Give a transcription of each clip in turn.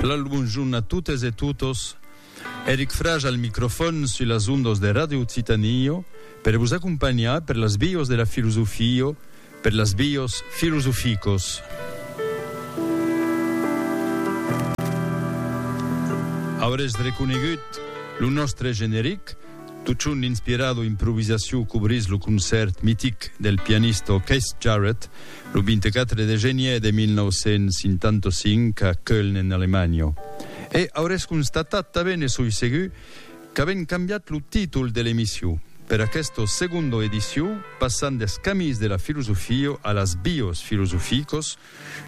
Lal bonjorn a totes e totos, Eric Frage al microfòn sus las ondas de Radio Occitània per vos acompanhar per las vias de la filosofia, per las vias filosoficas. Aurètz reconegut lo nòstre generic? Totjorn inspirado improvisacion cobrís lo concèrt mitic del pianista Keith Jarrett lo 24 de genièr de 1955 a Köln en Alemanha. E aurètz constatat tanben, e soi segur, qu'avèm cambiat lo títol de l'emission per aquesta segonda edicion, passant deth camins de la filosofia a las bios filosoficos,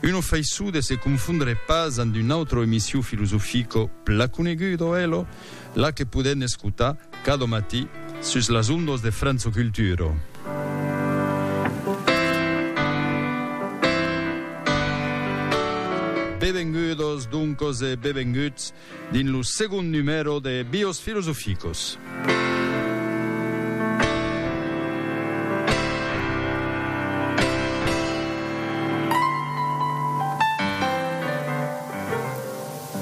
Uno faiçut de se confondre pas amb un autre emission filosofico pla conegut o elo la que podètz escotar cada matí sus las ondas de França Cultura. Bevengudos doncos e bevenguts Dins lo segond numèro de Bios Philosophicos.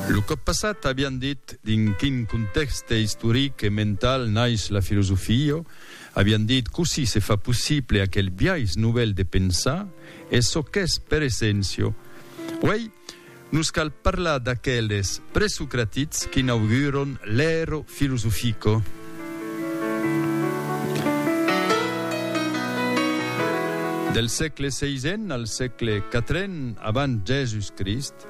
Lo còp passat avián dit dins quin contèxte istoric e mental nais la filosofia, avián dit cossí se fa possible aquel biais novèl de pensar e çò qu'es per essencio. Uèi, Nos cal parlar d'aqueles presocratics qu'inauguron l'Aero Filosofico. Del sègle seisen al sègle quatren abans Jèsus Crist,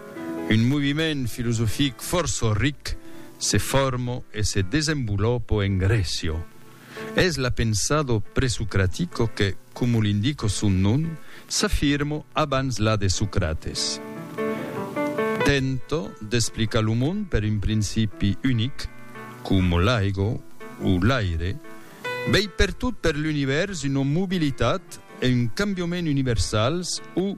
un moviment filosofic fòrça ric se fòrmo e se desenvolòpo en Grècia. Es la pensado presocratico que, como l'indico son nom, s'afirmo abans la de Socrates. Tento d'explicar lo mond per un principi unic, como l'aigo o l'aire, vei pertot per l'univèrs una mobilitat e un cambioment universals o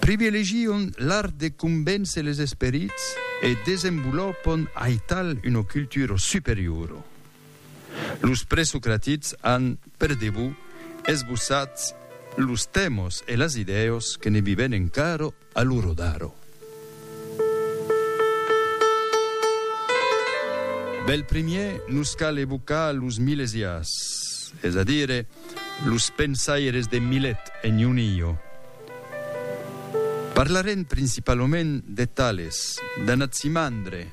Privilegion l'art de convéncer les esperits e desenvolopon aital una cultura superiora. Los presocratics an, per debut, esbossat los tèmas e las idèas que ne vivèn encara a l'ora d'ara. Bèl primièr, nos cal evocar los milesiás, es a dire, los pensaires de Milet e Nunillo. Parlarem principalament de Tales, d'Anaximandre,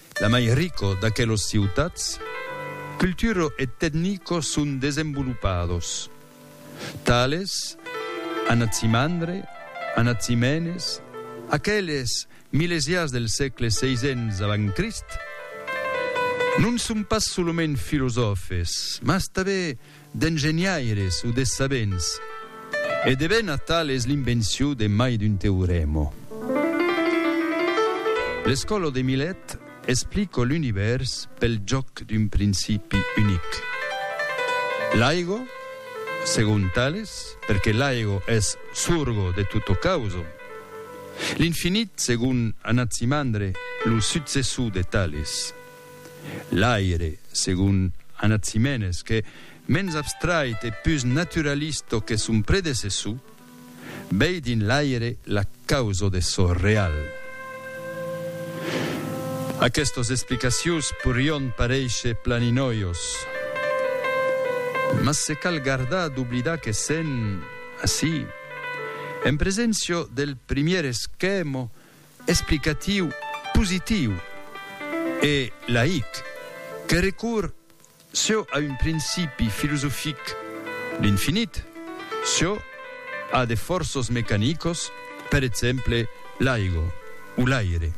La mai rico d'aquelos ciutats culturo e tecnico son desenvolupados, tales Anatsimandre, Anatzimenes, aqueles milesiás del sègle seisens avant Crist, non son pas solament filosòfes, mas tanben d'engenhaires o de sabents, e de ben atal es l'invencion de mai d'un teorèmo. L'escòla de Milet explica l'univèrs pel jòc d'un principi unic. L'aigo, segon Tales, perque l'aigo es sorgo de tota causa. L'infinit, segon Anacimandre, lo successor de Tales. L'aire, segon Anaximenes, qu'es mens abstrait e pus naturalista que son predecessor, vei dins l'aire la causa de çò real. Aquestas explicacions porián paréisher planinòios, mas se cal gardar d'oblidar que sèn, ací, en preséncia del primièr esquèma explicatiu, positiu e laic que recorre çò a un principi filosofic, l'infinit, çò a de fòrços mecanicos, per exemple l'aigo o l'aire.